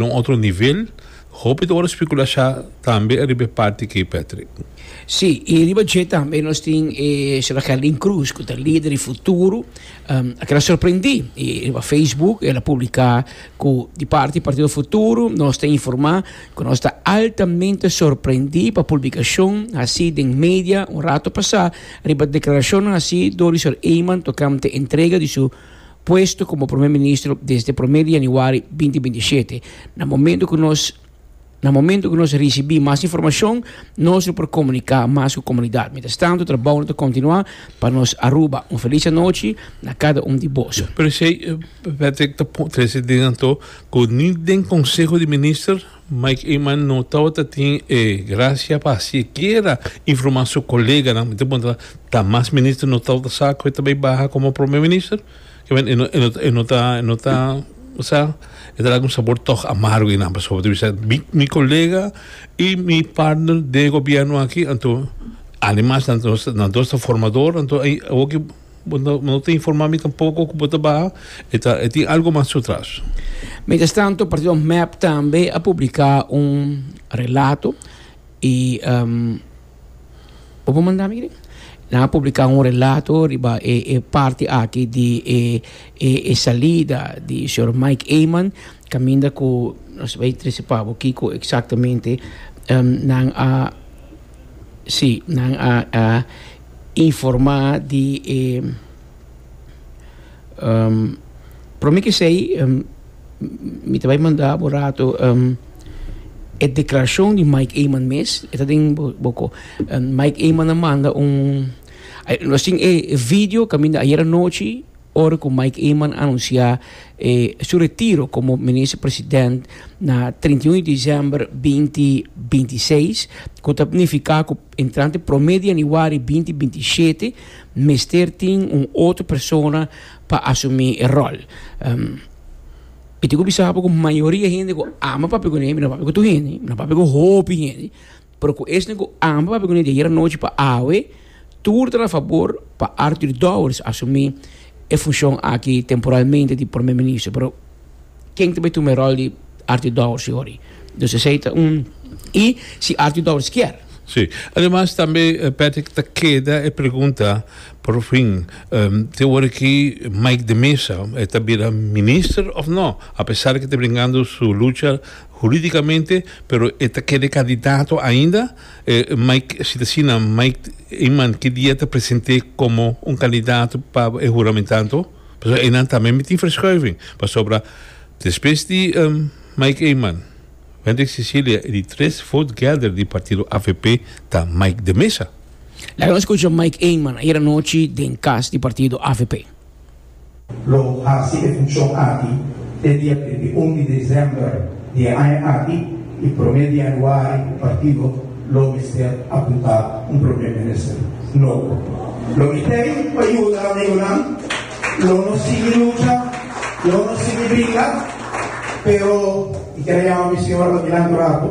na un otro nivel, hopi ta por specula sha tambe riba e parti key Patrick. Si, y riba dje tambe nos tin e Sra. Kerlyn Cruz cu ta lider di Futuro, a keda sorprendi y riba Facebook el a publica cu di parti Partido Futuro nos ta informa cu nos ta altamente sorprendi pa publicacion haci den media un rato pasa riba declaracionnan haci door di Sr. Eman tocante entrega di su puesto como Prome Ministro desde prome di Januari binti binti shete. Na momento cu nos na momento cu nos ricibi mas informacion nos lo por comunica mas cu comunidad. Mientras tanto trabounan ta continua pa nos Aruba. Un feliz anochi na cada un di boso. Presey Patrick ta trece din anto cu ni den Conseho di Minister, Mike Eman no tabata tin e gracia pa sikiera informa su coleganan. Mi ta puntra, ta mas minister no tabata sa cu e ta bay baha como Prome Minister? Kibain e no e no e no ta e no ta sa? E ta dal un sabor toch amargo einan pasobra mi ta bisa mi mi colega y mi partner den e gobierno aki anto animanan nos nos dos ta formador anto awoki Bo no no ta informa mi tampoco cu bo ta baha. E ta e tin algo mas ciotras. Mientras tanto, partido mep tambe a publica un relato y bo por manda mi aki? Nan a publica un relato riba e e parti aki di e e e salida di señor Mike Eman caminda cu nos bay tricipa bo kico exactamente nan a si nan a a Informá di e promé ku esei mi ta bai manda bo rato e deklarashon di Mike Eman mes. E ta den bokor. Mike Eman a manda un, nos tin e video kaminda ayer anochi ora ku Mike Eman a anunsiá su retiro komo Minister President na treinta i un di desèmber binti binti seis, ku ta nifiká ku. Entrante prome di anuari binti binti i shete mester tin un otro persona pa asumi e rol. Mi tin ku bisa bo ku mayoria hende ku ama papia kuné mi no papia ku tur hende, mi no papia ku hopi hende, pero ku esnan ku ama papia kuné di ayer anochi pa awe tur ta na fabor pa Arthur Dowers asumi e funshon aki temporalmente di Prome Minister. ken ta bai tuma e ròl di Arthur Dowers yori. Dus esei ta un i si Arthur Dowers kier. Sí. Ademas tambe Patrick ta keda e pregunta por fin te ora ki Mike de Meza e ta bira minister of no apesar ki ta bringando su lucha huridicamente pero e ta keda e candidato ainda Mike si ta asina Mike Eman ki dia ta presente como un candidato pa e huramentanto? Pasobra einan tambe mi tin verschuiving, pasobra despues di Mike Eman, Wendrick Cecilia y di tres vote getter di partido avp ta Mike de Meza. Laga nos scucha Mike Eman ayer anochi den cas di partido avp. Lo haci e funcion aki te dia trint'e un di december. di e aña aki i prome di januari ku partido lo mester apunta un prome minister nobo. Lo mi ta ei pa yuda amigunan, lo nos sigui lucha, lo nos sigui bringa, pero i ker a yama mi señora pa miran un ratu.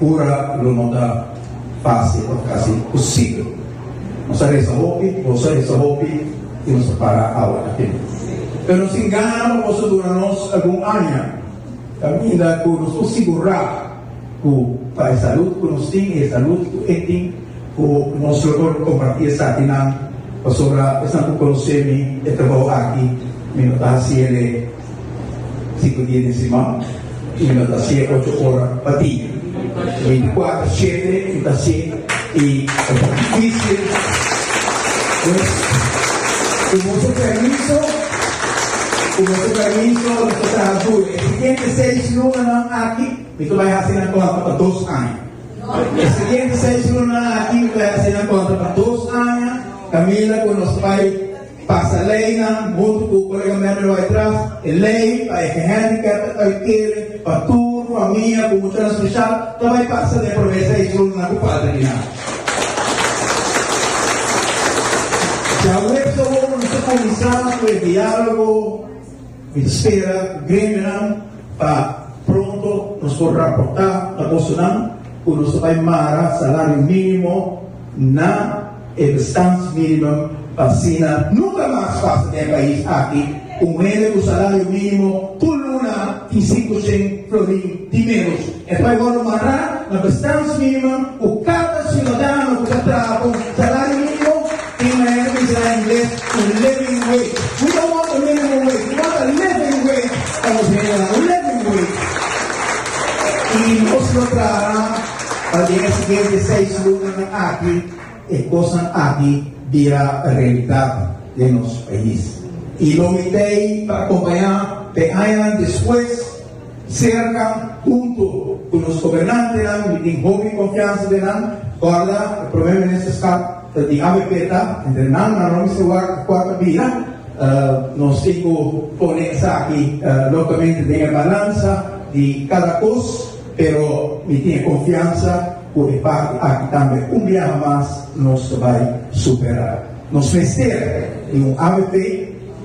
Ora lo no ta fásil tabata kasi imposibel. Nos a resa hopi, boso a resa hopi i nos a para awe aki. Pero nos tin gana pa boso duna nos algun aña kaminda ku nos por sigurá ku pa e salud ku nos tin i e salud ku e tin, ku nos lo por kompartí esakinan pasobra esnan por konosé mi, e trabou aki mi lo ta hasi el e. Sinku dia den siman i lo ta siye ocho ora pa dia. Veinticuater shete i ta así i e ta difícil pues ku boso permiso, ku boso permiso mi ta traha duro. E siguiente seis lunanan aki mi ta bai hasi nan kontra pa dos aña. E siguiente seis lunanan aki mi ta bai hasi nan kontra pa dos aña Camila ku nos bai Pasa leinan huntu ku kolega Mary Waytraf e lei pa e gehandicap ta bai kere pa tur famia ku muchanan speshal ta bai pasa den e prome seis runnan ku falta di nan. Djaweps awor nos ta kuminsá ku e dialogo. Mi ta spera cu grindenan pa pronto nos por raporta na bosonan cu nos ta bay mara salario minimo na e bestandsminimum pa asina nunca mas pasa den e pais aki un hende cu salario minimo tur luna tin sinku cien florin di menos. E bai wòrdu mará na bestans minimum ku kada siudadano ku ta traha pa un salario minimo tin manera di se na ingles un living wage. We don't want a minimum wage, we want a living wage pa nos hendenan, un living wage. I nos lo traha pa den e siguiente seis lunanan aki e kosnan aki bira realidat den nos pais. I lo mint'ei ta akompañá den añanan despues. Cerca, hunto cu nos gobernantenan y tin hopi confiansa den nan, corda e Prome Ministerskap ta di avp ta, entre nan nan lo mester wak a cuata bira, nos tin cu pone esaki locamente den e balansa di cada cos, pero mi tin e confiansa cu e parti aki tambe un biaha mas nos ta bay supera. Nos mester di un avp.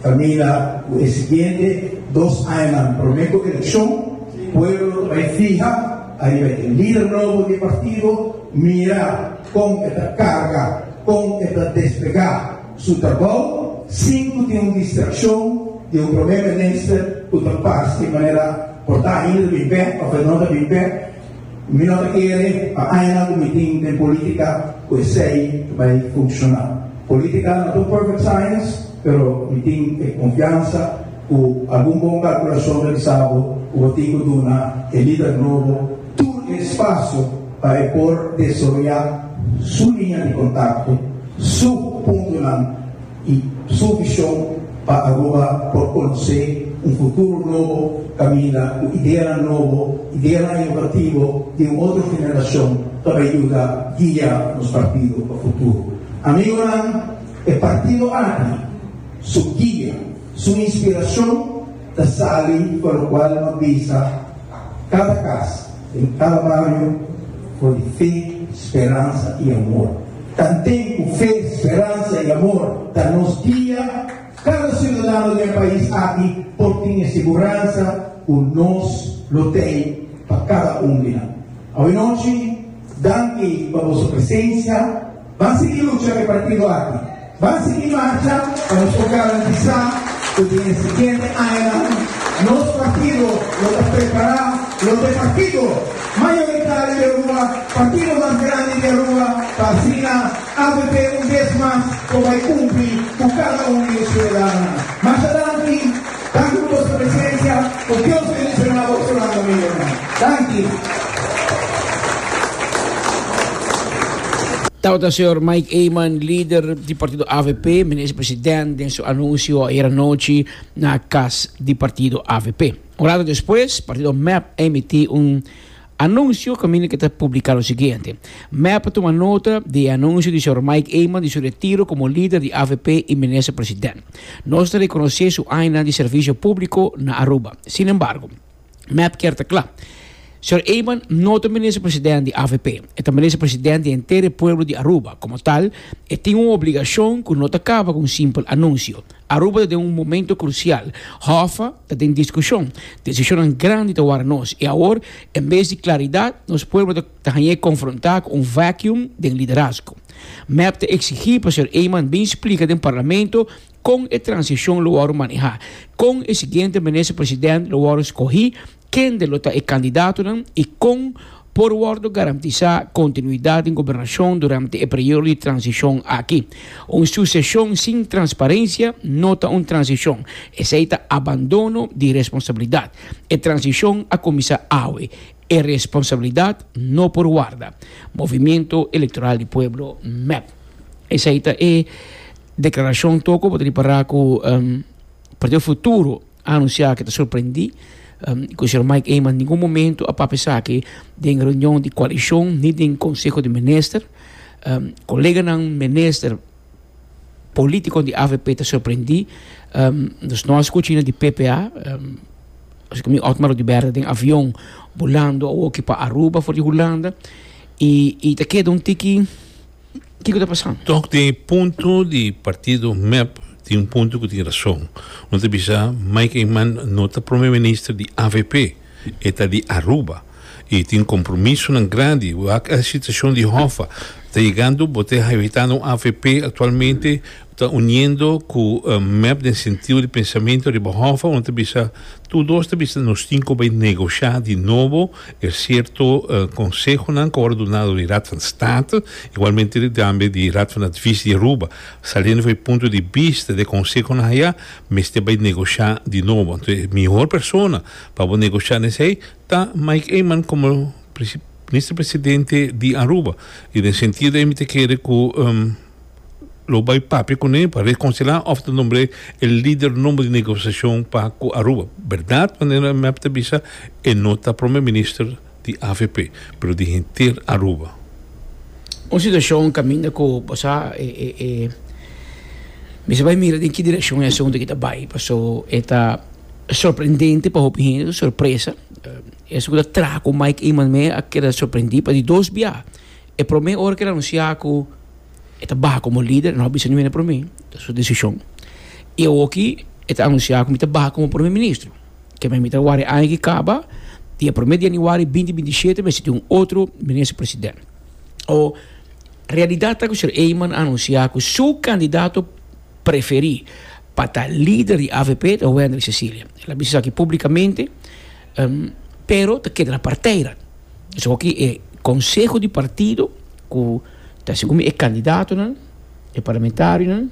Ta mira cu e siguiente dos añanan, prome cu eleccion, pueblo ta bay fiha ariba di e lider nobo di e partido, mira con e ta carga, con e ta despega su trabao sin cu tin un distraccion di un Prome Minister cu ta pasa di manera por ta ainda ta bin bek of e no ta bin bek. Cu mi no ta kere pa añanan cu mi tin den politica cu esey ta bay funciona. Politica no ta un perfect science, pero mi tin e confiansa cu algun bon calculacion ta bisa bo cu bo tin cu duna e lider nobo tur e espacio pa e por desaroya su linea di contacto, su puntonan, y su vision pa Aruba por conoce un futuro nobo caminda cu ideanan nobo, ideanan inovativo di un otro generacion pa bay yuda guia nos partido pa futuro. Amigonan, e partido aki, su guia, su inspiracion, ta sali pa locual no bisa cada cas den cada bario for di fe, speransa y amor. Tanten cu fe, speransa y amor ta nos guia, cada ciudadano den e pais aki por tin e siguransa cu nos lo tey pa cada un di nan. Awe nochi, danki pa boso presencia. Ban sigui lucha e partido aki. Ban sigui marcha pa nos por garantisa cu den e siguiente añanan nos partido lo ta prepara lo ta e partido mayoritario di Aruba, partido mas grandi di Aruba pa asina avp un bes mas por bay cumpli cu cada un di nos ciudadanonan. Masha danki. Danki por su presensia. Ku Dios bendiciona bo su landa mi hermano. Danki. Tabata señor Mike Eman, lider di partido avp, minister president den su anuncio ayer anochi na cas di partido avp. Un rato despues, partido mep a emití un Anunsio kaminda ke ta publiká lo siguiente, Mep a tuma nota di e anunsio di señor Mike Eman di su retiro komo lider di avp i minister president. Nos ta rekonosé su añanan di servisio públiko na Aruba. Sin embargo, Mep kier ta kla, Señor Eman no ta minister president di avp, e ta minister president di henter e pueblo di Aruba. Komo tal, e tin un obligashon ku no ta kaba ku un simpel anunsio. Aruba ta den un momento crucial. Hoffa ta den discusion. Decisionnan grandi ta wara nos. I awor, en bes di claridad, nos pueblo ta ta hañ'é confronta cu un vacuum den liderazgo. Mep ta exigi pa señor Eman bin splica den Parlamento con e transición lo wòrdu maneha, con e siguiente Minister-President lo wòrdu scogi Kende lo ta e kandidatonan i kon por wòrdu garantisá kontinuidat den gobernashon durante e periodo di transishon aki? Un suseshon sin transparensia no ta un transishon, esei ta abandono di responsabilidat. E transishon a kuminsá awe, e responsabilidat no por warda, Movimiento Electoral di Pueblo, mep. Esei ta e deklarashon toko bo ta ripará ku Partido Futuro. Anunciá ke ta sorprendí ku Sr. Mike Eman ningun momentu a papia esaki den reunion di koalishon ni den konseho di minister. Koleganan minister politikon di avp ta sorprendí. Dus no a skucha ain di ppa. Asiki mi Otmar Odubert den avion bulando awoki pa Aruba for di Hulanda i ta keda un tiki. Kiko ta pasa? Tok di e punto di partido mep tin un punto ku tin rason. Lo ta bisa Mike Eman no ta Prome Minister di avp, e ta di Aruba i tin kompromisonan grandi wak el situashon di Hoffa ta yegando. Bo ta evitando un avp aktualmente Ta uniendo cu mep den sentido di pensamiento riba hofa unda ta bisa tur dos ta bisa nos tin cu bay negocia di nobo e cierto consehonan cu a wor dunado di Raad van State igualmente tambe di Raad van Advies di Aruba saliendo van e punto di bista di e consehonan haya mester bay negocia di nobo anto e mihor persona pa bo negocia nes hei ta Mike Eman como Minister Presidente di Aruba y den sentido de ey mi ta kere cu. lo bai papia kuné pa rekonsilá òf ta nombr'é e lider nùmber di negosiashon pa ku Aruba. Bèrdat manera e mep ta bisa e no ta prome minister di avp, pero di henter Aruba. Un situashon kaminda ku bo sa e e e mester bai mira den ki direkshon e asuntu aki ta bai paso e ta sorprendente pa hopi hende, ta sorpresa. Esei ku ta traha ku Mike Eman me a keda sorprendí pa di dos biaha. E promé ora ku el anunsiá ku e ta baha komo lider, el no a bisa niun e promé, ta su desishon. I awoki e ta anunsiá ku mi ta baha komo promé ministro. Ke men mi ta ward'e aña ki kaba, dia promé di yanüari binti binti i shete mi a sinti un otro minister president. O realidat ta ku Sir Eman a anunsiá ku su kandidato preferí pa ta lider di avp ta Wendrick Cecilia. El a bisa esaki públikamente. pero ta keda na parteira. Esakoki e konseho di partido ku ta hasi komo e kandidatonan, e parlamentarionan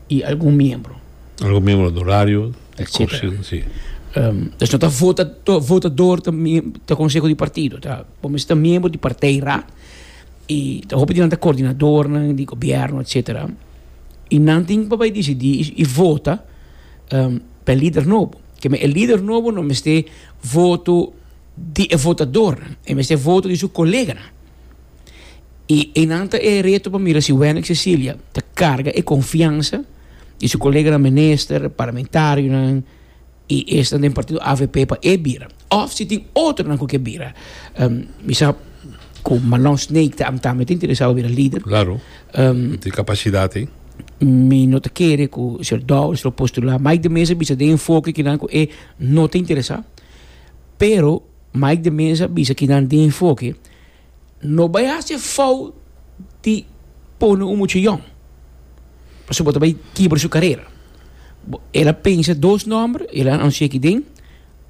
i algun miembro. Algun miembro honorario, etcetera. Si. Pues no ta vota, votador ta ta konseho di partido, ta por mester ta miembro di parteira i ta hopi di nan ta kordinadornan di gobièrnu etcetera i nan tin pa bai disidí i vota pa e lider nobo. Keme e lider nobo no mester voto di e votadornan, e mester voto di su koleganan. I einan ta e reto pa mira si Wennix Cecilia ta karga e konfiansa di su koleganan minister, parlamentarionan i esnan den partido avp pa e bira òf si tin otronan ku ke bira. Mi sa ku Malon Snake ta interesá pa bira lider. Klaro, e tin kapasidat ei. mi no ta kere ku Sr. Dowers lo postulá. Mike de Mesa bisa den enfoke kinan ku e no ta interesá. Pero Mike de Mesa bisa kinan den enfoke no bai hasi e fout di pone un mucha yòn, pasobra bo ta bai kibra su karera. Bo, el a pensa dos nòmber, el a anunsiá aki den,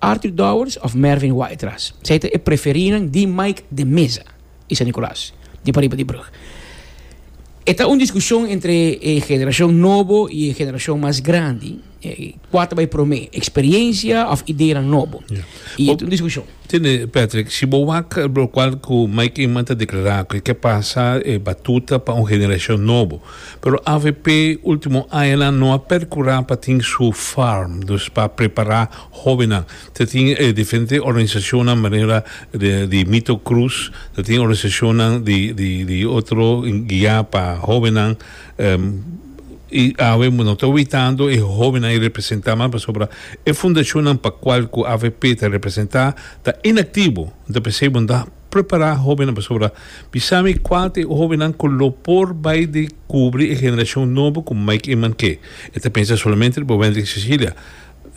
Arthur Dowers òf Mervin Waterras. Esei ta e preferinan di Mike de Mesa. y San Nicolas di pariba di brug. E ta un discusion entre e generacion nobo y e generacion mas grandi cua ta bay prome, experiencia of ideanan nobo. Y e ta un discusion. Tene Patrick, si bo wak lo cual cu Mike Inman ta declara cu e kier pasa e batuta pa un generacion nobo. Pero avp ultimo añanan no a percura pa tin su farm, dus pa prepara hobennan. Ta tin diferente organisacionnan manera di Mito Cruz, ta tin organisacionnan di otro guia pa hobennan y awe no ta witando e hobennan y representa mas pasobra e fundacionnan pa cual cu avp ta representa ta inactivo enta p'esey bo na prepara hobennan pasobra mi sa mi cual ta e hobennan cu lo por bay di cubri e generacion nobo cu Mike Eman ke e ta pensa solamente riba Wendrick Cecilia.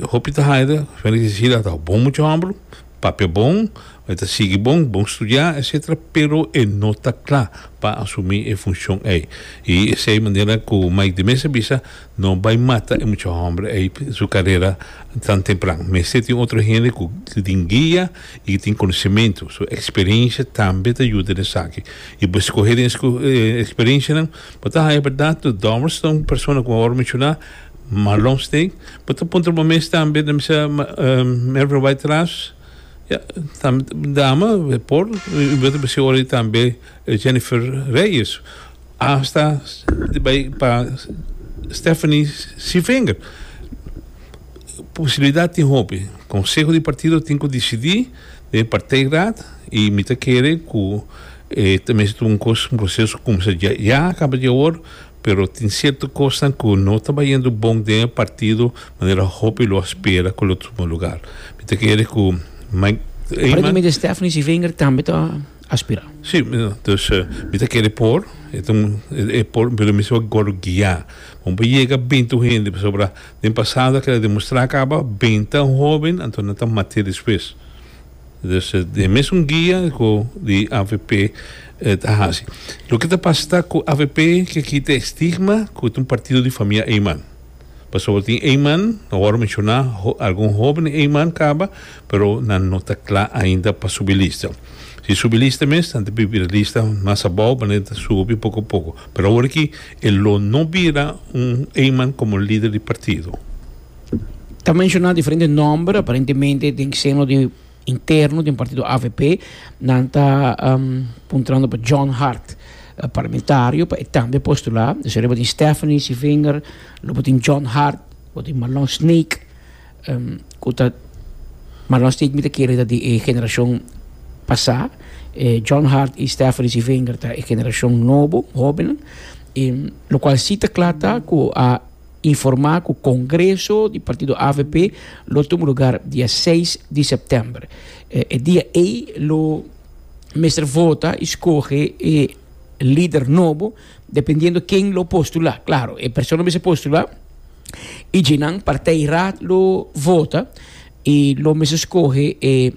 Hopi ta haya de felicicida ata bo bon mucha homber papia bon e ta sigui bon bon studia etcetera pero e no ta cla pa asumi e funcion ey y esey manera cu Mike de Meza bisa no bay mata e mucha homber ey su carera tan tempran mester tin otro hende cu tin guia y cu tin conocemento su experiencia tambe ta yuda den esaki y bo scoge den experiencianan bo ta haya berdad dor ston persona cu bo a menciona. Marlon Steen bo ta puntra bo mes tambe ta bisa Melvin White Ras ya tambe dama por y bo ta bisa ora di tambe Jennifer Reyes hasta ta bay pa Stephanie Civinger posibilidad tin hopi conseho di partido tin cu dicidi den partij raad y mi ta kere cu ta mester un proceso cu cuminsa dje ya a caba dje awor pero tin cierto cosnan cu no ta bayendo bon den e partido manera hopi lo a spera cu lo tuma lugar. Mi ta kere cu Mike Eman. Paremente Stephanie Civinger tambe ta aspira. Si, dus mi ta kere por, e por, pero mi siba Goro guia. Bo por yega bintu hende pasobra den pasado a keda demostra caba benta hoben anto nan ta mate despues. Dus e mesun guia cu di avp ta haci. Loke ta pasa ta cu avp kier kita e stigma cu ta un partido di famia Eyman. Pasobra tin Eyman, no wou menciona algun hoben Eyman caba, pero nan no ta cla ainda pa subi lista. Si subi lista mes, nan ta bibi e lista mas abou manera ta subi poco a poco. Pero awor aki e lo no bira un Eyman como lider di partido. Ta menshona diferente nòmber, aparentemente den seno di interno den partido avp, nan ta puntrando pa John Hart, parlamentario, pa e tambe postulá. Desha ariba tin Stephanie Civinger, luego tin John Hart, luego tin Marlon Snake, ku ta, Marlon Snake mi ta kere ta di e generashon pasá, John Hart i Stephanie Civinger ta e generashon nobo, hóbennan, lokual si ta kla ta ku a. Informá ku kongreso di partido avp lo tuma lugar dia seis di sèptèmber. E dia ei lo mester vota i skohe e lider nobo dependiendo ken lo postulá. Klaro, e persona lo mester postulá i dje nan partij raad lo vota i lo mester skohe e.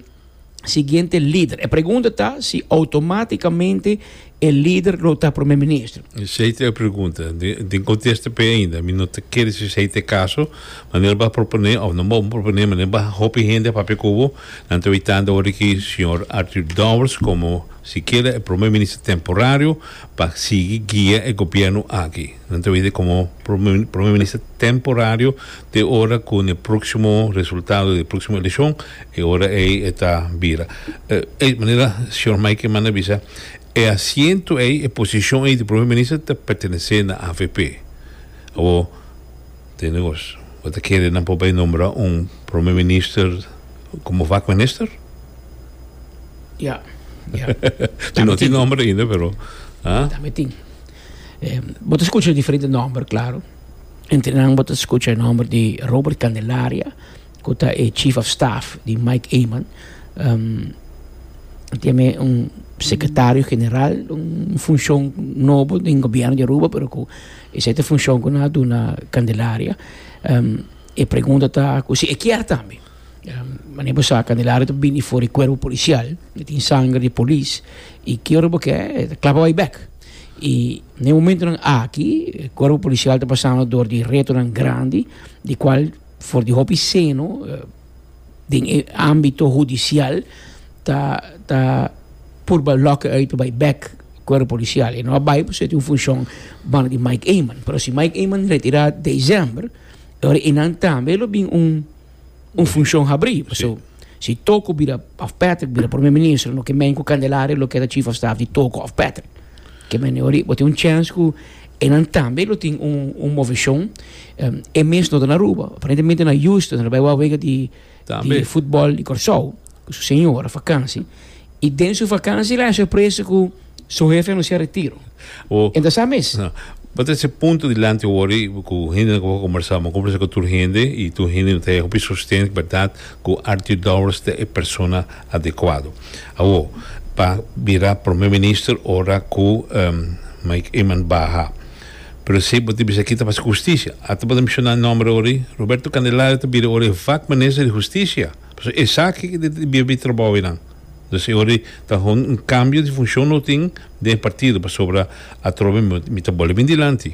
siguiente lider. E pregunta ta si automaticamente e lider lo ta prome minister. Esei ta e pregunta. Den contesta p'e ainda. Mi no ta kere si esei ta e caso, ma nel ba propone, of nan bon propone, ma nel ba hopi hende a papia cu bo, nan ta weitando ora ki señor Arthur Dowers como sikiera e prome minister temporario pa sigui guia e gobierno aki. Nan ta wini komo prome minister temporario te ora ku un e próksimo resultado di e próksimo eleshon e ora ei e ta bira. Ei manera señor Maike manda bisa e asiento ei, e posishon ei di prome minister ta pertenesé na avp. Awo tende kos bo ta kere nan por bai nombra un prome minister komo vak minister? Ya, ya. Tin no tin nòmber ainda pero, ha? Dame tin. Bo ta skucha diferente nòmber, klaru. Entre nan bo ta skucha e nòmber di Robert Candelaria, ku ta e chief of staff di Mike Eman. Tin tambe un sekretario general, un funshon nobo den gobièrnu di Aruba, pero ku esei ta e funshon ku nan a duna Candelaria. E pregunta ta ku si e kier tambe. Manera bo sa, Candelaria ta bini for di kuerpo polisial, e tin sanger di polis, i ki ora bo ke, e ta klapa bai bèk. I n'e momentonan aki e kuerpo polisial ta pasando dor di retonan grandi, di kual for di hopi seno den e ámbito hudisial ta ta purba lòk'e uit pa bai bèk kuerpo polisial. E no a bai pasobra e tin un funshon banda di Mike Eman. Pero si Mike Eman retirá desèmber, e ora ei nan tambe lo bin un. un función habrí. Paso, si Toko bira, of Patrick bira primer minister, no ke men ku Candelaria lo keda chief of staff di Toko of Patrick. Ke men e orí, bo tin un chèns ku e nan tambe lo tin un, un moveshon. Um, e mes no ta na Aruba. Aparentemente na Houston, ta bai wak wega di, di futbòl di Kòrsou. ku su señora vakansi i den su vakansi el a hasi presa ku su hefe anunsá retiro. Bo E ta sa mes. a bo ta hasi punto dilanti wòrdu ku hende ku bo a kombersá, bo a kombersá ku tur hende i tur hende lo ta hega hopi sosten bèrdat ku Artur Dowers ta e persona adekuado. Awor pa bira Promé Minister ora ku Mike Eman baha. Pero si bo ta bisa ki ta pasa ku hustisia, ata bo ta menshoná e nòmber orí, Roberto Candelario ta bira ora e vak Minister di Hustisia. Pasobra esaki ta debía bay trabao eynan. Entonces e ora ta haga un cambio di funcion lo tin den e partido pasobra atrobe mi ta boli bin dilanti.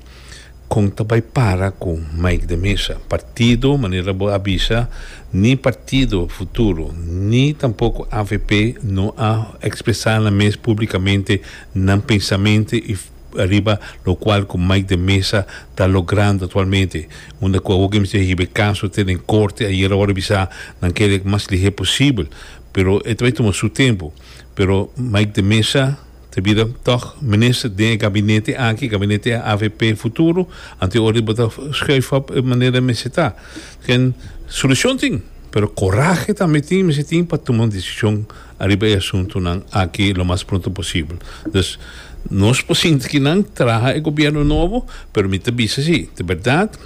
Con ta bay para cu Mike de Meza? Partido manera bo a bisa ni partido futuro ni tampoco avp no a expresa nan mes publicamente nan pensamente y. ariba locual cu Mike de Meza ta logrando actualmente unda cu awoke mester hibe caso te den corte ayer awor a bisa nan kere cu mas lihé posibel pero e ta bay tuma su tempo pero Mike de Meza ta bira tog minister den e gabinete aki gabinete avp futuro anto ora bo ta schuif op e manera mester ta solucion tin pero corahe tambe tin mester tin pa tuma un decision Ariba e asuntunan aki lo mas pronto posibel. Dus, nos por sinti ki nan traha e gobièrnu nobo, pero mi ta bisa si, di bèrdat,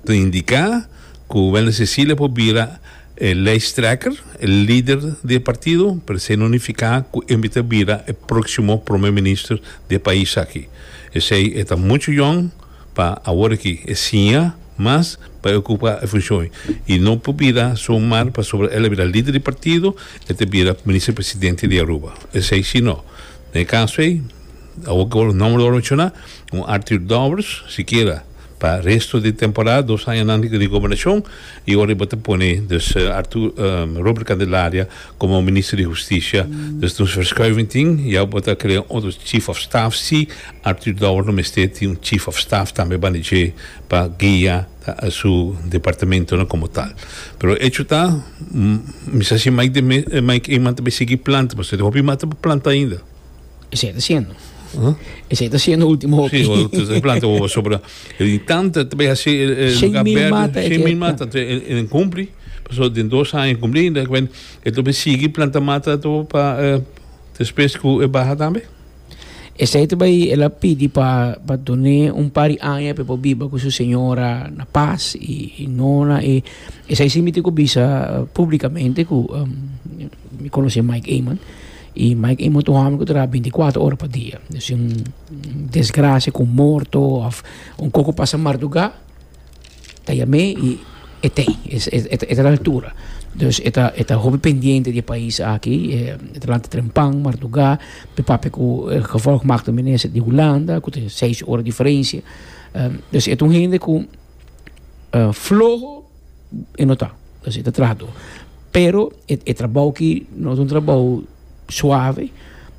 ta indiká ku Wèlner Cecilia por bira e lèisttrekker, e lider di e partido, pero esei no nifiká ku e mester bira e próksimo promé minister di e pais aki. Esei e ta muchu yòn. pa awor aki e siña mas pa e ocupa e funcion y no por bira so mar pasobra el a bira lider di partido e ta bira Minister Presidente di Aruba esey si no na e caso ey awor cu los nomber lo a menciona un Arthur Daubers sikiera pa resto di temporada dos añanan di gobernacion. Y ora e bo ta pone dus Arthur Robert Candelaria como Minister di Husticia, dus nos verschuiving tin, ya bo ta crea un otro Chief of Staff, si Arthur Dower no mester tin un Chief of Staff tambe banda dje pa guia su departamentonan como tal. Pero hecho ta, mi sa si Mike Eman ta bay sigui planta, pasobra tin hopi mas ta por planta ainda. Ese está haciendo. ¿Ah? Ese está haciendo último. Sí, o planta o sobre. Y tanto te ve así el el lugar verde. Mata, Shane mil mata te en cumpli. Paso de dos años cumpli en dat ben el tobe sigue planta mata to pa eh, después cu e baja tambe. Ese te vai el pidi pa pa doné un par años pe po biba con su señora na paz y, y nona y ese simiti cu bisa públicamente cu um, mi conoce Mike Eman. I Mike Imo ta un hòmber ku traha binticuater ora pa dia. Si un desgrasia ku un morto òf un kos ku pasa mardugá, ta yam'é i e ta ei, e ta na altura. Dus e ta e ta hopi pendiente di e pais aki, e ta lanta trempan mardugá, e papia ku e gevolg mak tu minister di Hulanda ku ta seis ora diferensia. Dus e ta un hende ku floho. e no ta e ta traha tur pero e trabou ki no ta un trabou suave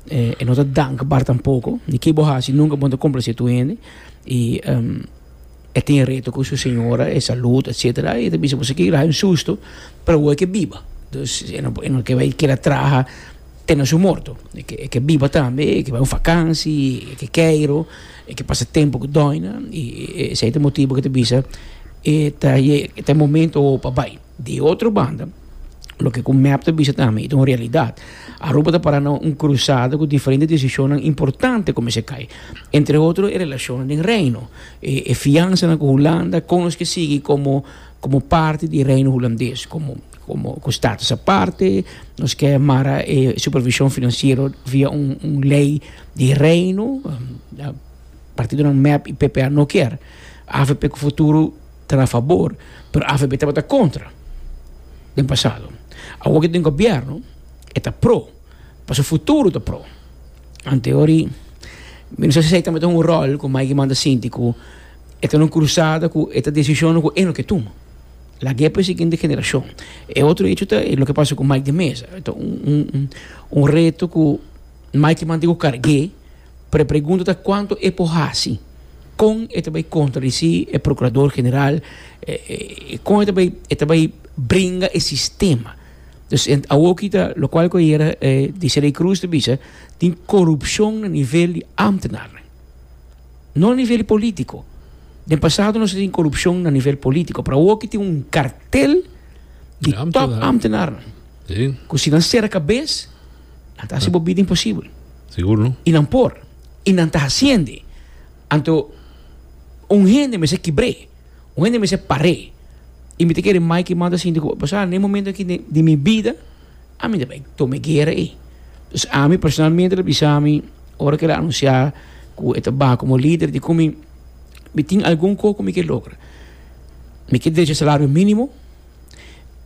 e no ta dank bar tampoko di ki bo hasi nunka bo no ta complase tur hende y e tin e reto cu su señora e salud etcetera y e ta bisa boso ki rayo un susto pero awo e ke biba dus e no ke bai keda traha te na su morto e ke biba tambe e ke bai un fakansi e ke keiro. E ke pasa tempu ku Doina i esei ta motibu ku e ta bisa e ta e ta e momento awo pa bai. Di otro banda loke ku mep ta bisa tambe i ta un realidat, Aruba ta para na un krusada ku diferente desishonnan importante kumins'a kai. Entre otro e relashonnan den Reino, e fiansanan ku Hulanda, kon nos ke sigui komo komo parti di Reino Hulandes, komo. Komo ku status aparte, nos ke mara e supervishon finansiero via un lei di Reino. Partidonan mep i PPA no kier. Avp ku Futuro ta na fabor, pero avp tabata kontra den pasado. Awor ke tin gobièrnu, e ta pro, pasobra Futuro ta pro. Ante ori mi no sa si esei tambe ta un ròl ku Maiki manda sinti ku e ta na un krusada ku e ta desishonnan ku e no ke tuma. Lag'é pa e siguiente generashon. E otro hecho ta e loke pasa ku Mike de Meza. Ta un reto ku Mike manda ku karg'é, pero e pregunta ta kuantu e por hasi, kon e ta bai kontradisí e prokurador general, kon e ta bai bringa e sistema. Dus awoki ta lokual ku ayera Dicely Cruz ta bisa, tin korupshon na nivel di ámtenarnan. No a nivel politico. Den pasado nos a tin corupcion na nivel politico, pero awo aki tin un cartel di Di top ambtenaar. ambtenarnan. Sí, Cu si nan cera cabes, nan ta haci bo bida imposible. sigur no. Y nan por. Y nan ta haciende. Anto, un hende mester kibr'é. Un hende mester par'é. Y mi ta kere Mike manda sinti cu, Basa, na e momento aki di, di mi bida, Ami ta bay tuma e guera ey. Entonces ami personalmente lo bisa mi ora cu el a anuncia cu e ta baha como lider di cu mi mi tin algun cosa cu mi ke logra. Mi ke derecha salario minimo,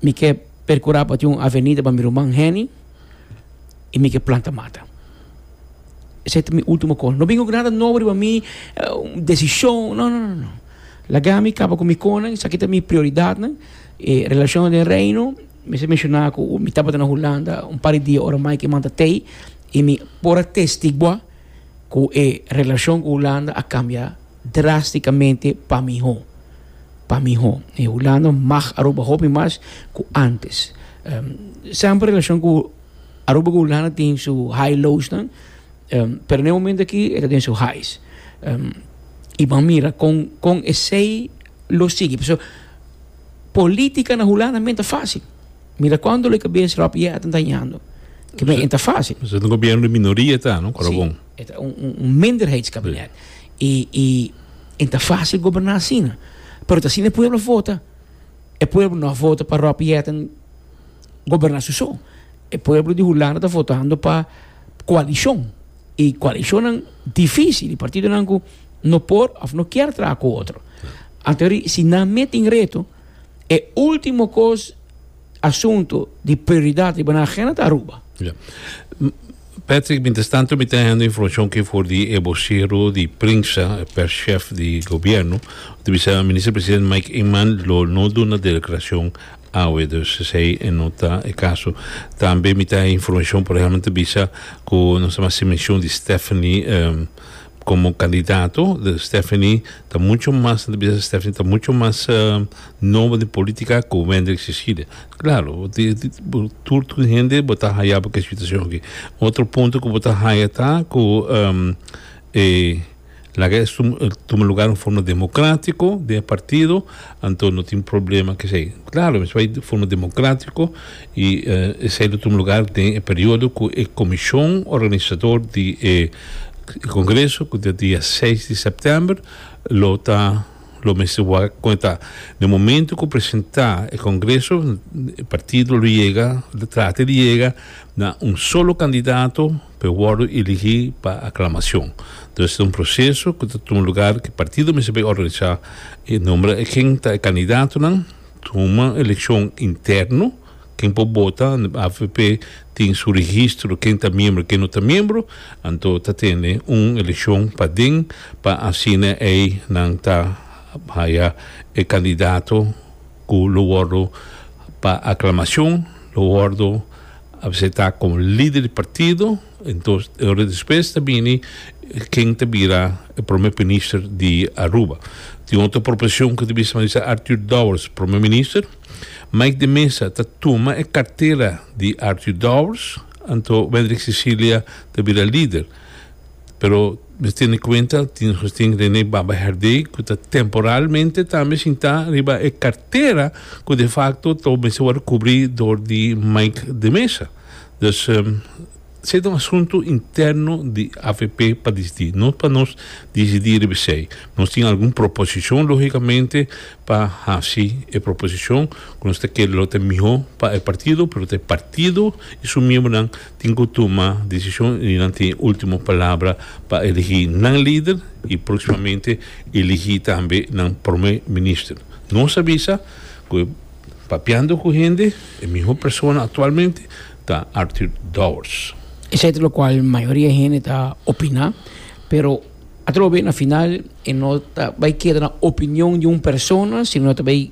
mi ke percura pa tin un avenida pa mi ruman Henny y mi ke planta mata. Esey ta mi ultimo call. No bin oca nada nobo riba mi, un decision, no, no, no. Laga mi caba cu mi conan, esaki ta mi prioridadnan, e relacionnan den Reino. Mi sa menshona ku mi tabata na Hulanda un par di dia ora mai ku e man ta tei, i mi por a testiguá ku e relashon ku Hulanda a kambia drástikamente pa mihó, pa mihó. E Hulanda mag Aruba hopi mas ku ántes. Semper e relashon ku Aruba ku Hulanda tin su high lowsnan, pero na e momentu akí e ta den su highs. I bo a mira kon kon esei lo sigui. Politica na Hulanda men ta facil. Mira cuando lo cabeza Rob J. Atten ta hañando. Que men enta facil. Pues un gobierno di minoria e ta, no? Cora bon. Si, e ta un, un, un minderheidskabinet. I, i en ta facil goberna asina. Pero ta asina e pueblo a vota. E pueblo no a vota pa Rob J. Atten goberna su so. E pueblo di Hulanda ta votando pa coalicion. E koalishonnan difísil, e partidonan ku no por òf no kier traha ku otro. Anto ahori, si nan mei tin reto, e último kos, asunto di prioridat riba nan agenda ta Aruba. Ya. Patrick, mientrestanto mi ta hendo informashon ke for di e bosero di prensa, e perschef di gobièrnu, ku ta bisa Minister Presidente Mike Eman lo no duna de deklarashon Awe dus esei no ta e kaso. Tambe mi ta e informashon por ehamber ta bisa ku nos a hasi menshon di Stephanie komo kandidato. Stephanie ta mucho mas mi ta bisa Stephanie ta mucho mas nobo den politika ku Wendrick Cecilia. Klaro bo tur tur hende bo ta haya bo ke situashon aki. Otro punto ku bo ta haya ta ku e. Laga es tuma lugar un forma demokratiko den e partido anto no tin problema kesei klaro mespa i forma demokratiko i esei lo tuma lugar den e periodo ku e komishon organisador di e kongreso ku ta dia seis di sèptèmber lo ta lo mester wak kon e ta den momento ku presentá e kongreso e partido lo yega lo trata di yega na un solo kandidato. P'e wòrdu eligí pa aklamashon. Dòs ta un proseso ku ta tuma lugar ku e partido mester bai organisá i nombra ken ta e kandidatonan, tuma elekshon interno, ken por bota, avp tin su registro ken ta miembro ken no ta miembro, anto ta tene un elekshon paden pa asina ei nan ta haya e kandidato ku lo wòrdu pa aklamashon, lo wòrdu. Abse ta komo lider di partido, entos e ora despues ta bini ken ta bira e prome pinister di Aruba. Tin otro proporcion ku ta bisa nan bisa Arthur Dowers prome minister. Mike de Meza ta tuma e kartera di Arthur Dowers, anto Wendrick Cecilia ta bira lider. pero mes tene cuenta tin Agustin Rene Baba Herdé cu ta temporalmente tambe shinta riba e cartera cu de facto ta mester worde cubri door di Mike de Meza. Dus esey ta un asunto interno di avp pa dicidi, no pa nos dicidi riba esey. Nos tin algun proposicion logicamente pa haci e proposicion cu nos ta kere lo ta miho pa e partido pero ta e partido y su miembronan Tin cu tuma decision y nan tin e ultimo palabra pa eligi nan lider y proximamente eligi tambe nan Prome Minister. Nos a bisa cu papiando cu hende e miho persona actualmente ta Arthur Dowers. Esey ta locual mayoria hende ta opina, pero atrobe na final e no ta bay keda na opinion di un persona sino ta bay.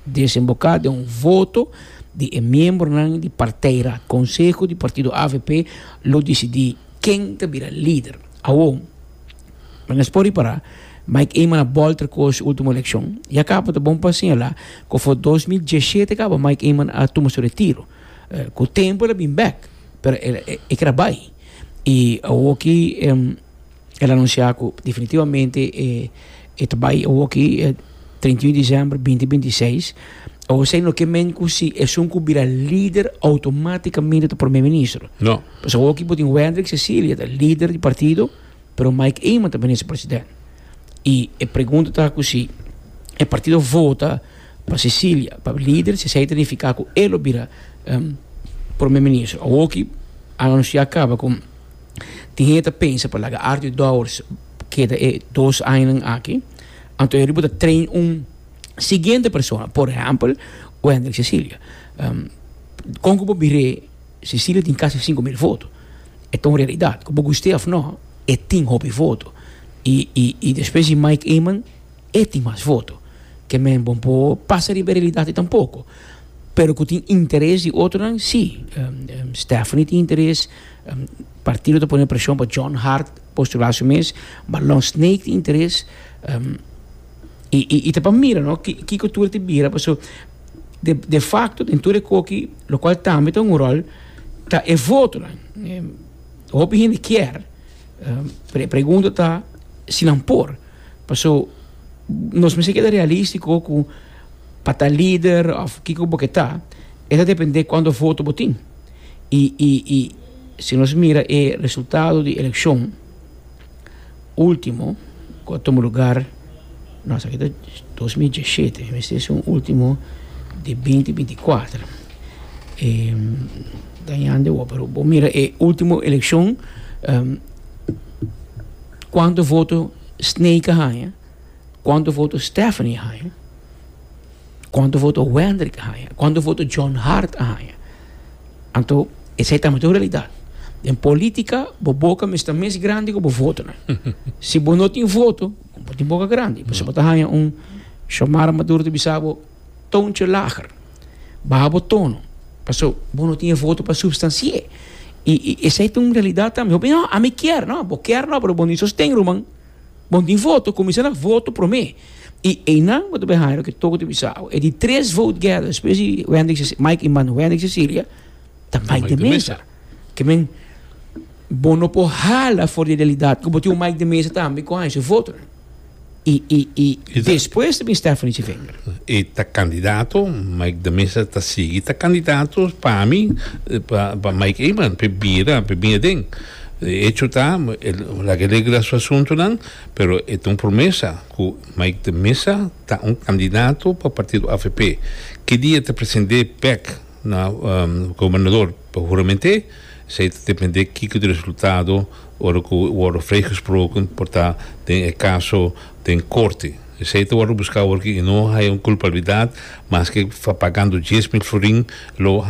Desemboká den un voto di e miembronan di partei ra, konseho di partido avp lo disidí ken ta bira lider. Awor, nan es por ripará, Mike Eman a bòl ter kos último elekshon. Ya kaba ta bon pa señalá ku afó dos mil diesshete kaba Mike Eman a tuma su retiro. Ku tempu el a bin bèk, pero e kera bai. I awor aki. El anunsiá ku definitivamente e ta bai awoki treinta i un desèmber binti binti i seis. José no ke men ku si esun ku bira lider outomátikamente ta promé ministro. No. Pasobra awoki bo tin Wendrick Cecilia ta lider di partido, pero Mike Eman ta minister president. I e pregunta ta ku si e partido vota pa Cecilia pa lider, si esei ta nifiká ku e lo bira promé ministro. Awoki a anunsiá kaba ku. Tin hende ta pensa pa laga Arthur Dowers keda e dos añanan aki, anto e riba bo ta train un siguiente persona, por ehempel Wendrick Cecilia. Kon ku bo mir'é Cecilia tin kasi sinku mil foto, e ta un realidat. Ku bo gust'é òf nò, e tin hopi foto, i i i despues di Mike Eman e tin mas foto. Ke men bo por pasa riba e realidat ei tampoko, pero ku tin interes di otronan si. Stephanie tin interes, Partido ta pone presion pa John Hart postular su mes, ma Lon Snake tin interes y ta pa mira no kiko tur ta bira paso de facto den tur e koki lo cual tambe ta un rol ta e votonan. Hopi hende kier pero e pregunta ta si nan por paso nos mester keda realistico cu pa ta lider of kiko bo ke ta e ta depende cuanto voto bo tin. Y y y si nos mira e resultado di eleccion ultimo cu a tuma lugar, no esaki ta dos mil diesisiete, mester ser un ultimo di binti binti kuater, e dañando e wor, pero bo mira e ultimo eleccion cuanto voto Snake a haya, cuanto voto Stephanie a haya. Cuanto voto Wendrick a haña? Cuanto voto John Hart a haña? Anto, esei tambe ta un realidad. Den politica, bo boca mester ta mes grandi cu bo votonan. si bo no tin voto, bo no tin boca grandi. Pasobra bo ta haña un, Xiomara Maduro ta bisa bo, toontje lager. Baha bo tono. Paso, bo no tin e voto pa substanci'e. I, i esei ta un realidad tambe. Hopi, no, ami kier. No, bo kier no, pero bo no i sosten, ruman. Bon tin voto kuminsá na voto promé i einan bo ta bin haña loke toko ta bisa awe. E di tres vote gather despues di Wendy Cecilia, Mike i Mano, Wendy Cecilia ta Mike de Meza. Ke men bo no por hala for di realidat ku bo tin un Mike de Meza tambe ku a haña su voto. I i i despues ta bin Stephanie Civenga. E ta kandidato, Mike de Meza ta sigui ta kandidato pa mi pa pa Mike Eman pa e bira pa e bin aden. E echo ta, e laga e regla su asuntunan, pero e ta un promesa cu Mike de Meza ta un candidato pa partido avp. Ki dia e ta present'é bek na gobernador pa hurament'é, esei ta depend'é kico di resultado ora cu worde vrijgesproken por ta den e caso den Corte. Esei ta wòrdu buska awor i no haya un kulpabilidat. Maske pagando dies mil florin lo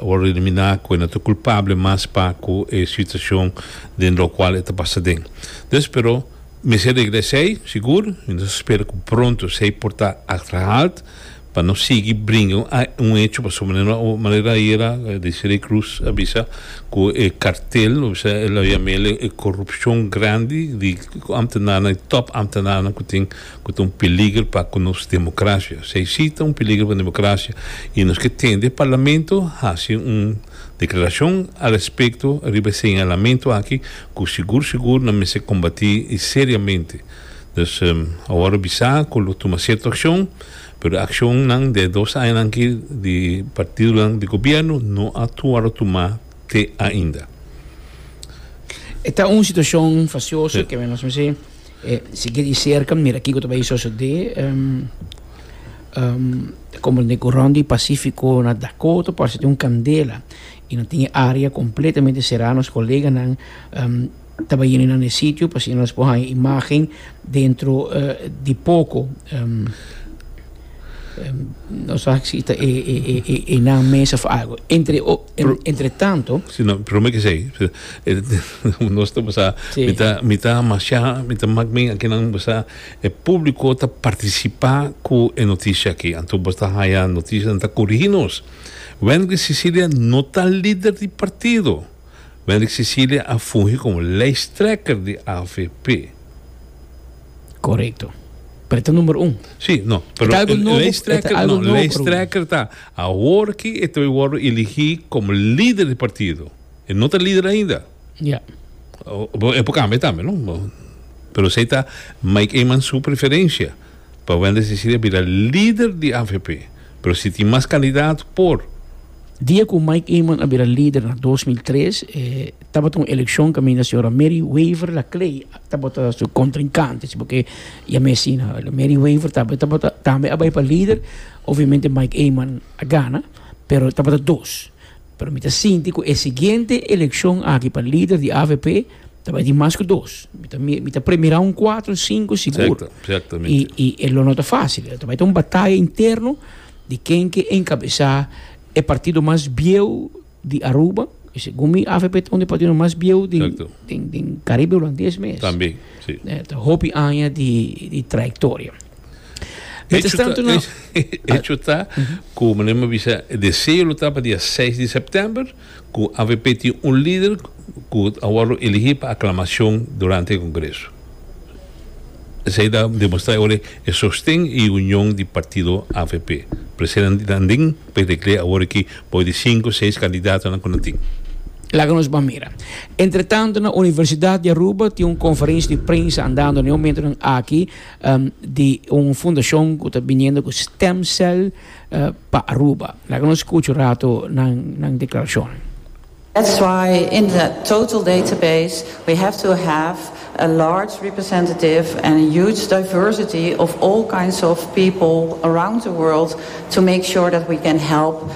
wòrdu eliminá ku e no ta kulpabel mas pa ku e situashon den lokual e ta pasa den. Dus pero mester regla esei sigur i nos ta spera ku pronto esei por ta achterhaald. pa no sigui bringa un hecho pasobra manera no a manera ayera Desiree Cruz a bisa cu e cartel lo bisa el lo yama el e corupcion grandi di ambtenanan di top ambtenanan cu tin cu ta un peligro pa cu nos democracia esey si ta un peligro pa democracia y nos ke tende e parlamento haci un declaracion al respecto riba e señalamento aki cu sigur sigur nan mester combati seriamente awor lo bisa cu lo tuma cierto accion. Pero e accionnan den e dos añanan aki di partidonan di gobierno no a wòrdu tumá te ainda. E ta un situacion facioso cu men nos mester sigui di cerca mira kico ta bay socede. Ta comprende cu rond di Pacifico na Dakota parse tin un candela y nan tin e area completamente cera nos coleganan. Ta bayina nan e sitio pa asina nos por haña imagen dentro di poco. No sa aki si ta e nan mes of algo. Entre entre tanto. Si no, pero mi ke sei. Nos ta basa mi ta mi ta masha mi ta mak mi aki nan basa e publico ta participa cu e noticia aki anto bo ta haña noticianan ta corigi nos. Wendry Cecilia no ta lider di partido. Mendrik Cecilia a fungi komo lijsttrekker di avp. Korekto. Pero e ta numero un. Sí, no, pero e ta lijsttrekker, no, lijsttrekker ta awor ki e ta bai wordo eligí komo lider di partido. E no ta lider ainda. Ya. E por kambia tambe, no? Pero esei ta Mike Eman su preferensia. Pa Wendy Cecilia bira lider di avp pero si tin mas kandidat por. Dia ku Mike Eman a bira lider na dos mil tres e tabata un elekshon kaminda señora Mary Wever da Clay tabata su kontrinkante si bo ke yam'e asina. Mary Wever tambe tabata tambe a bai pa lider obviamente Mike Eman a gana pero tabata dos. Pero mi ta sinti cu e siguiente eleccion aki pa lider di avp ta bay di mas cu dos. Mi ta mi ta premira un cuatro, cinco sigur. Y y e lo no ta facil. Ta bay ta un bataya interno di ken ke encabesa e partido mas bieu di Aruba. Y segun mi avp ta un di e partidonan mas bieu den den den Caribe Hulandes mes. Ta hopi aña di di trayectoria. Hecho ta cu meneer me bisa e deseo lo ta pa dia seis di september cu avp tin un lider cu a worde eligi pa aclamacion durante e congreso esey ta demostra awor e sosten y e union di partido avp presidente Landin por declare awor ki por di cinco seis candidatonan cu nan tin. Laga nos ban mira. Entretanto na Universidad di Aruba tin un conferentie di prensa andando na e momentonan aki. di un fundashon ku ta biniendo ku stem cell pa Aruba. Laga nos skucha un ratu nan deklarashon. That's why in the total database we have to have a large representative and a huge diversity of all kinds of people around the world to make sure that we can help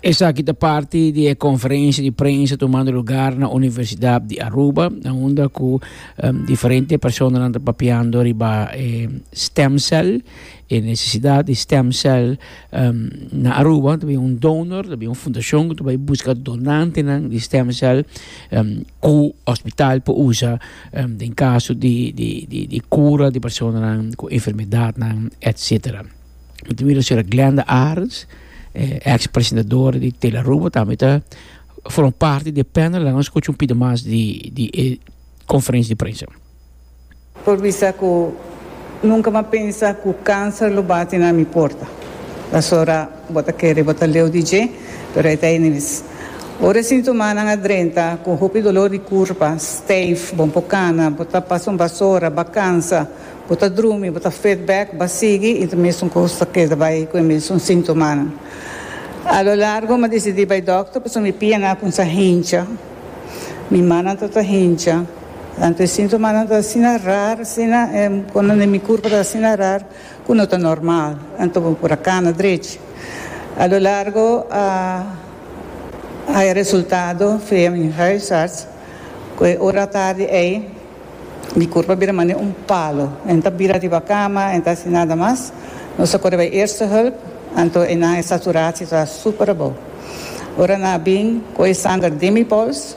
Esaki ta parti di e conferencia di prensa tumando lugar na Universidad di Aruba, na unda cu um, diferente personanan ta papiando riba e stem cell. E nesesidat di stem cell na Aruba ta bin un donor, ta bin un fundashon ku ta bai buska donantenan di stem cell ku hospital por usa den kaso di kura di personanan ku enfermedatnan etsetera. Mi ta mira señora Glenda Arends, eks presentadora di Tele Aruba tambe ta forma parti di e panel. Laga nos skucha un pida mas di e konferensia di prensa. Por bisa cu nunca m'a pensa cu cancer lo bati na mi porta. Pasobra bo ta kere bo ta leu di dje, pero e ta enemis. Ora e sintomanan a drenta cu hopi dolor di curpa, stijf, bo n'por cana, bo ta pasa un basora, ba cansa, bo ta drumi, bo ta fed bek, ba sigui y ta mesun cos ta keda bay cu e mesun sintomanan. A lo largo m'a decidi bay doctor pasobra mi pia n'akunsa hincha, mi mannan ta ta hincha. Tantu e sintomanan ta asina rar asina e konan den mi kurpa ta asina rar ku no ta normal anto bo por a kana drech. A lo largo a haya resultado via mi huisarts ku e ora atardi ei mi kurpa bira manera un palo, en ta bira riba kama, en ta hasi nada mas. Nos a kore bai eerste hulp anto enan e saturasio ta super abou. Ora nan a bin ku e sanger den mi pols.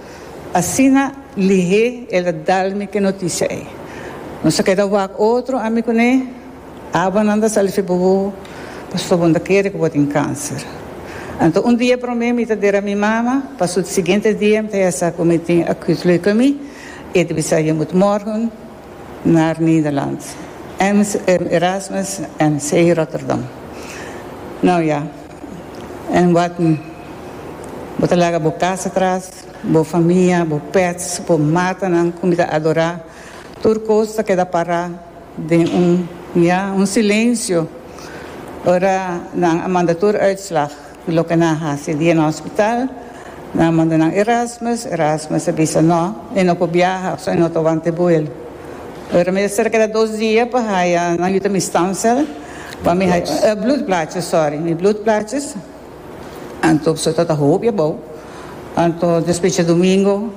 Asina Lihé el a dal mi ki notisia ei. Nos a keda wak otro, ami ku n'e abanan ta sali feba bo, pasobra bo no ta kere ku bo tin kanser. Anto un dia promé mi ta dera mi mama, pa su siguiente dia mi ta ya sa ku mi tin acute leukemie, e ta bisa je mut morgen naar Nederland, Erasmus MC Rotterdam. Nau ya. En wak mi. Bo ta laga bo kas atras, bo famia, bo pèts, bo matanan ku mi ta adorá. Tur kos ta keda pará den un, ya, un silensio ora nan a manda tur uitslag di loke nan a hasi. Dia na hospital. Nan a manda nan Erasmus, Erasmus a bisa, No, e no por biaha, pasobra e no ta wanta e buel. Ora mi ta ser a keda dos dia pa haya nan yu ta mi stamcel, pa mi haya, bloedplaatjes, sorry, mi bloedplaatjes, anto pasobra tata hopi abou, anto despues dje domingo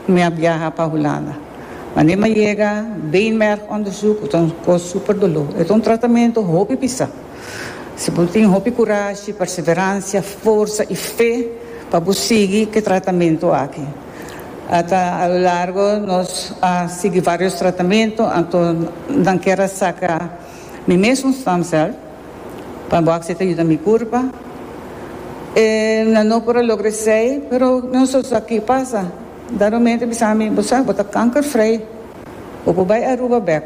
mi a biaha pa Hulanda. Mane mi a yega, beenmergonderzoek, e ta un kos super doló, e ta un tratamento hopi bisa. Si bo tin hopi kurashi, perseveransia, forsa i fe pa bo sigui ke tratamentu aki. Ata a lo largo nos a sigui varios tratamentu, anto nan kier a saka mi mes un stam cel pa bo aksepta yuda mi kurpa. E nan no por a logra esei, pero nan so sa ke pasa. Dado un mente bisa mi, bo sa bo ta kankervrij, bo por bai Aruba bek.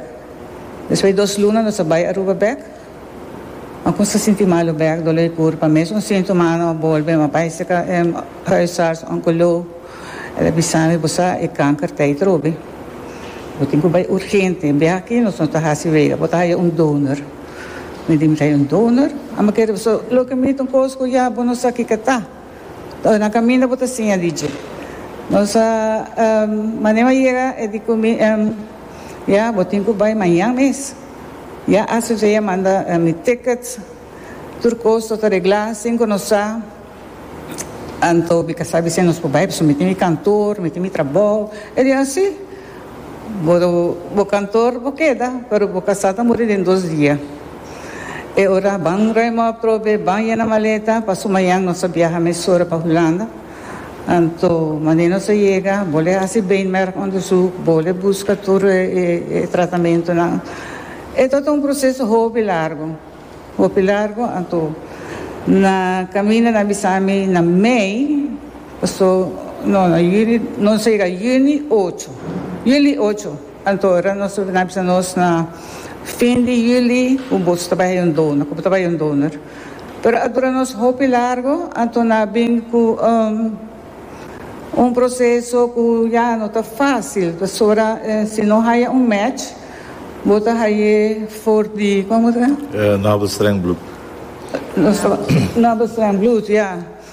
Despues dos luna nos a bai Aruba bek. Ma con sa sinti malo bek, dolor y curpa. Mes un sintoma ano a bolbe, ma bay sa ca em huisarts oncolo. El a bisa mi, bo sa e kanker ta ey trobe. Bo tin cu bay urgente. Bia aki, nos no ta haci wega. Bo ta haya un donor. Mi di, mi ta haya un donor? Amba kere boso loke mi tin cos cu ya bo no sa kico ta. Oe, na caminda bo ta siña di dje. Nos a em maneba yega, e di cu mi, em, Ya, bo tin cu bay mañan mes. Ya asocia ya manda mi tickets, tur cos lo ta regla sin cu nos sa, anto mi ca sabi si nos por bai pasobra mi tin mi cantor, mi tin mi trabao, e di asi bo bo cantor bo keda pero bo casa ta muri den dos dia, e ora a ban ruim op trobe, ban yena maleta pa suma yan nos a biaha mesora pa Hulanda. Anto manera nos a yega, bo le hasi beenmerg onderzoek, bo le buska tur e tratamentonan. E ta un proceso hopi largo, hopi largo, anto na caminda nan bisa mi na mei, paso no na juli, nos a yega juni ocho, juli ocho, anto ora nos nan bisa nos na fin di juli cu bo ta bay un donor, cu bo ta bay un donor. Pero a dura nos hopi largo, anto na bin cu un proceso cu ya no ta facil, pasobra si no haya un match bo ta haye for di, como ta? Nabelstreng bloed. Nabelstreng bloed, ya.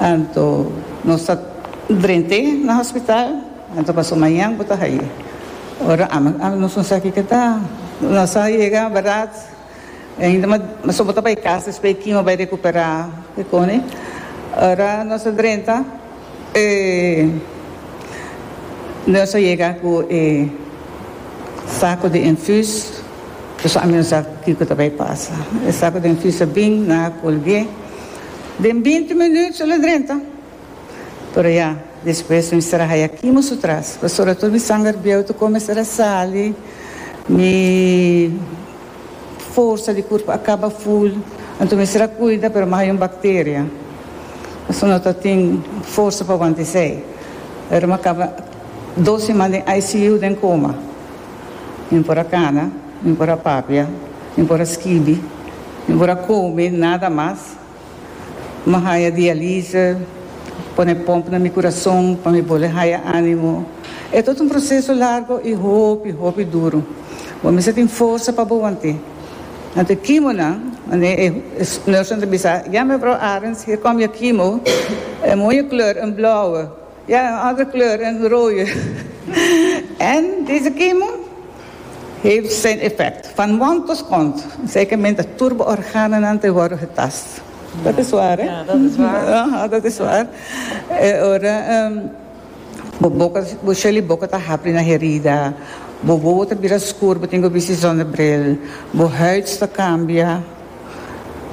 Anto nos ta drent'é na hospital, anto paso mañan bo ta haye. Ora ama ama nos no sa kiko ta. Nos a yega beraad, ainda ma so bo ta bay casa espe e kimo bay recupera kikoni. Ora nos a drenta e nos a yega cu e saco di infus, pasobra ami no sa kiko ta bay pasa. E saco di infus a bin, nan a colgu'é. Den binti minüt su lo drenta. Pero ya, despues mi mester a haya kimo su tras, pasobra tur mi sanger bieu ta komesá a sali, mi forsa di kurpu a kaba ful, anto mi mester a kuida, pero mi a haya un bakteria. Pasobra no ta tin forsa pa wanta esei. Ora mi a kaba dos siman den ICU, den koma. Mi por a cana, mi por a papia, mi por a skibi, mi por a come nada mas. M'ha haya dialise, pone pump na mi curason pa mi bole haya animo. E tot un proceso largo y hopi, hopi duro. Bo mester tin forsa pa bo wante. Anto e kimonan, wanneer e nursen ta bisa, ja mevrouw Arends, hier kom je kimo, e mooie kleur, een blauwe. Ya en other kleur en royo. En dese kemo heeft zijn effect van mond tot kont seke men ta turbo organonan te worde getast. Dat is waar hè? Ja dat is waar. Aha dat is waar e ora bo boka bo sheli boka ta hapri na herida bo wowo ta bira skur bo tin ku bisi zonder bril bo huid ta kambia.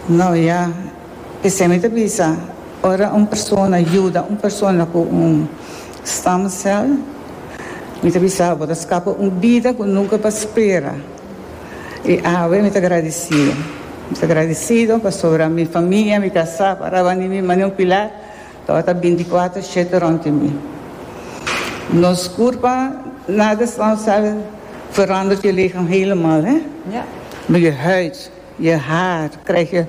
No ya, p'esei mi ta bisa, ora un persona yuda un persona ku un stam sel, mi ta bisa bo ta skapa un bida ku nunka pa spera. I awe mi ta gradisido. Mi ta gradisido pasobra mi famia, mi kasá, paraba niño mi mane un pilar, Ora ta binticuater shete rond di mi. Nos curpa nada staan sabe veranderd je lichaam helemaal hè. Maar je huid, je haar krijg je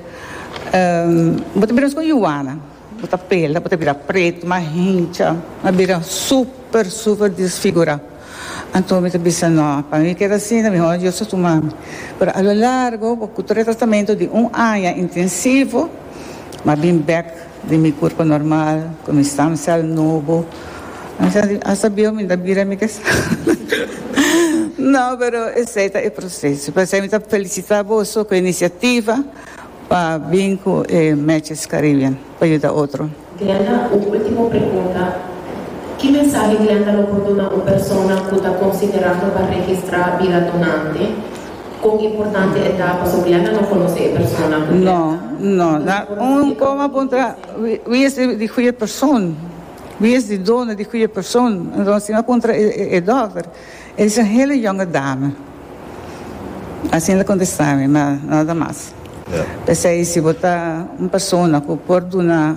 ehm bo ta bira nos con Juana bo ta pela bo ta bira preet mas hincha mas bira super super disfigura. Anto mi ta bisa no pa mi keda asina mihor Dios ta tuma mi. Pero a lo largo bo cu tres tratamento di un aña intensivo mi a bin bek. Di mi kurpo normal, ku mi stam sèl nobo. Asta bieu mi ta bira mi kesa. No, pero esei ta e proseso. P'esei mi ta felisitá boso ku e inisiativa pa bin ku e Matches Caribbean pa yuda otro. Glenda, un último pregunta. Ki mensahe Glenda lo por duna un persona ku ta konsiderando pa registrá bira donante? Kon importante e ta pa Soriana no konosé e persona ku No, no. Na un kom a puntra, Wi, wi es di goeie persoon? Wi es di dono di goeie persoon? Entonces si no a puntra e, e, e dokter, e di sen hele jonge dame. Asina el a kontestá mi, ma nada mas. P'esei si bo ta un persona ku por duna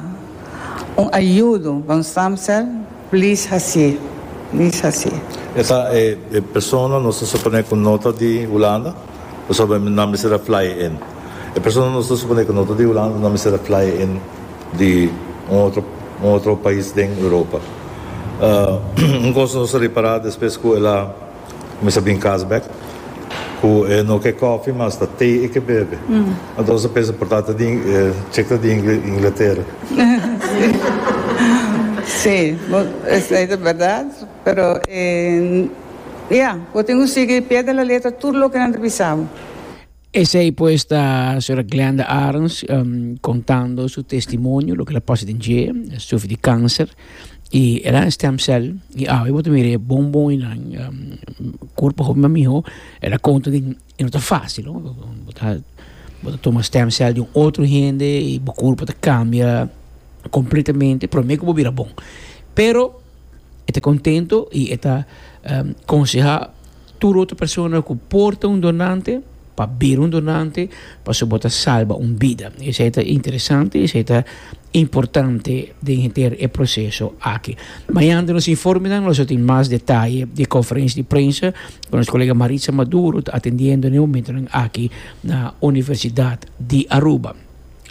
un ayudo pa un stamcel, Please haci, please haci. E ta e persona nos ta suponé ku no ta di Hulanda pasobra nan mester a fly in. E persona nos ta suponé ku no ta di Hulanda nan mester a fly in di un otro un otro pais den Europa. Un kos nos a repará despues ku el a. Mi sa bin cas bek cu e no ke coffee mas ta thee e ke bebe. Antos a pensa por ta ta di Chick ta di Ingletera. Si, bo esey ta berdad, pero e ya, bo tin cu sigui pie de la letra tur loke nan ta bisa bo. Esey pues ta Sra. Glenda Arens contando su testimonio loke la pasa den dje, el sufri di cancer y el a stem cell y awe bo ta mira e bon bon y nan curpo hopi mas miho, el a conta di e no ta facil no, bo ta bo ta tuma stem cell di un otro hende y bo curpo ta cambia completamente prome cu bo bira bon, pero e ta contento y e ta conseha Tur otro persona cu por ta un donante, pa bira un donante pasobra bo ta salba un bida. Esey ta interesante, esey ta importante den henter e proceso aki. Mañana den nos informenan nos lo tin mas detaye di e conferencia di prensa cu nos colega Maritza Maduro ta atendiendo na e momentonan aki na Universidad di Aruba.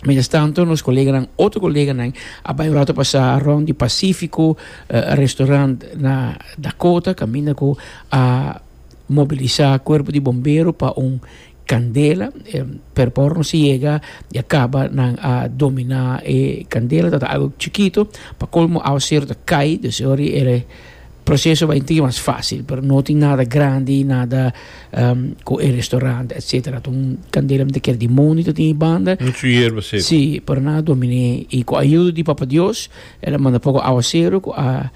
Mientras tanto, nos coleganan, otro coleganan, a bay un rato pasá rond di Pacífico eh, restaurant na Dakota, caminda cu a mobilisá cuerpo di bombero pa un candela, eh, pero pa ora nos a yega ya caba, nan a dominá e candela, tabata algo chikito, pa colmo awa cero ta cay, dus e ora di e Proceso bay tin mas facil pero no tin nada grandi nada cu e restaurante etcetera ta un candela mi ta ker di mondi ta tin banda si pero nan a dominé y cu ayuda di papa dios el a manda poco aguacero cu a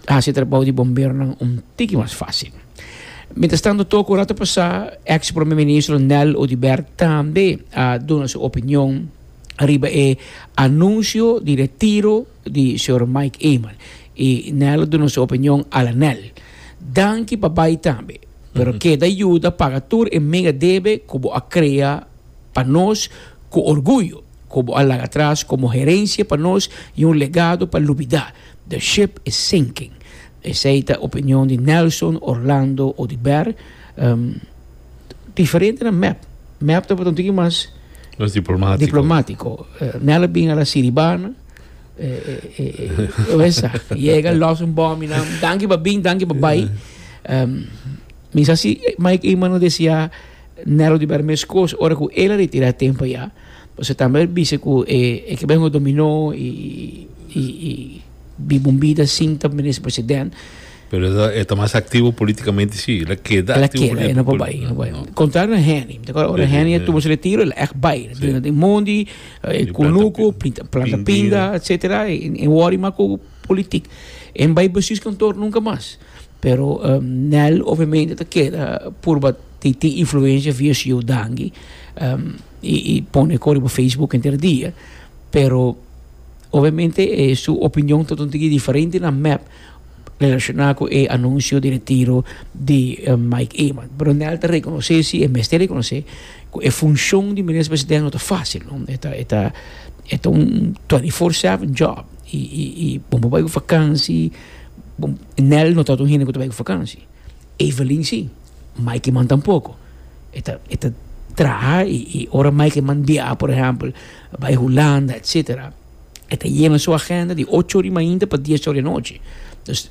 haci e trabao di bomberonan un tiki mas facil mientras tanto toco ora ta pasa ex prome ministro Nel Odibert tambe a duna su opinion riba e anuncio di retiro di Sr. Mike Emer y Nel a duna su opinion ala Nel. Danki pa bay tambe. Pero keda yuda paga tur e mega debe cu bo a crea pa nos cu orguyo, cu bo a laga atras como herencia pa nos y un legado pa lubida. The ship is sinking. Esey ta opinion di Nelson, Orlando Odibert. Diferentenan mep. Mep tabata un tiki mas diplomatico. Nel a bin ala Siribana. Oesa, llega, los un bom y nam, danki pa bin, danki pa bai. Um, mis así, Mike Eman no decía, Nero di Berme Scores, ora cu él retira tempo ya. Pues se también dice que eh, eh, que vengo dominó y, y, y, bi bombita sin tam minister presidente. Pero esa está más activo políticamente, sí. La queda Ela activo queda, ela não políticamente. vai, não vai. Contrário na Henny. Te acorda, ora Henny tuvo su retiro, ela echt bai. Sim. Mundi, E kunuku, planta pinda, etsetera, e e wòri mas ku politik. E bai besius kantor nunka mas. Pero Nel obviamente ta keda purba tin tin influensia via su youdangi, i i pone kor riba facebook henter dia, pero obviamente e su opinion ta tontigin diferente na mep. Relashoná ku e anunsio di retiro di Mike Eman, Brownell ta rekonosé si e mester rekonosé ku e funshon di minister presidente no ta fásil, no. E ta, e ta, e ta un twenty four seven job i, i, i bo no bai ku vakansi, bo, Nel no ta otro hende ku ta bai ku vakansi, Evelyn si, Mike Eman tampoko. E ta, e ta traha i, i ora Mike Eman biaha, por ehèmpel, bai Hulanda, etsetera. E ta yena su agenda di ocho ora di mainta pa dies ora di anochi. Dus,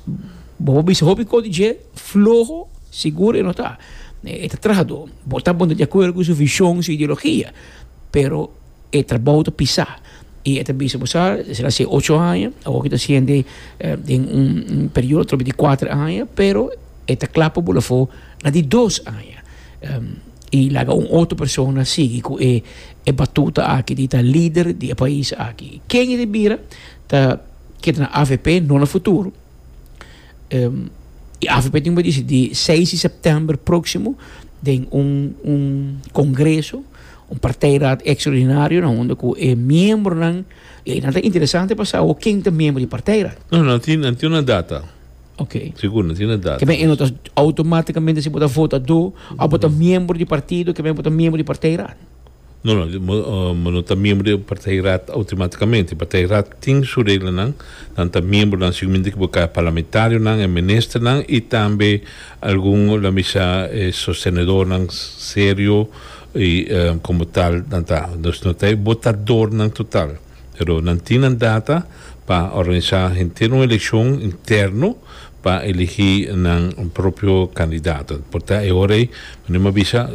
bo por bisa hopi kos di dje, floho sigur e no ta. E ta trahadó. Bo ta bon ta di akuerdo ku su vishon, su ideologia, pero e trabou ta pisá. I e ta bisa, bo sa, esei ta hasi ocho aña, awor ku e ta hasiende den un periodo atrobe di kuater aña, pero e ta kla pa bo la afó na di dos aña. I laga un otro persona sigui ku e batuta aki di ta lider di e pais aki. Ken i di bira ta keda na avp no na futuro. E avp tin por disidí seis di sèptèmber próksimo den un kongreso, un partijraad ekstraordinario na hunde ku e miembronan, i einan ta interesante pa sa awor ken ta miembro di e partijraad. No, nan tin un data. Ok. Sigur, no tin na data. Kebe eno ta automáticamente si bo ta votador, o bo ta miembro di partido, kebe bo ta miembro di partij raad? No, no, bo no ta miembro di partij raad automáticamente. Partij raad tin su reglanan, nan ta miembronan sigurmente ki bo ta parlamentarionan en ministernan i tambe algun la mi sa e sostenedornan serio i komo tal nan ta. Bo ta votadornan total. pero nan tin nan data pa organisá henter un elekshon interno pa eligí nan propio kandidato. Por ta e ora ei, mi no mi a bisa,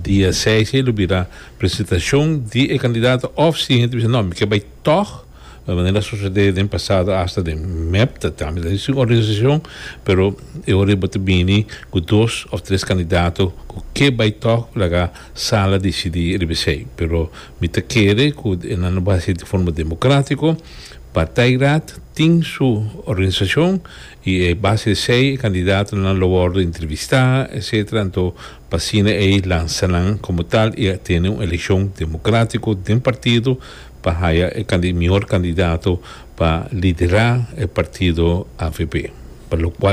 dia seis ei lo bira presentashon di e kandidato òf si e henter bisa nò mi ke bai tòg, manera a sosodé den pasado asta den mep, ta tambe ta sin organisashon, pero e ora ei bo ta bini ku dos òf tres kandidato ku ke bai tòg laga sala disidí riba esei, pero. Mi ta kere ku e nan lo basi di forma demokratiko. Partijraad tin su organisashon i e base esei e kandidaatonan lo wòrdu entrevistá etsetera anto pa asina ei lansa nan komo tal i tene un elekshon demokratiko den partido pa haya e mihor kandidato pa liderá e partido avp pa lokual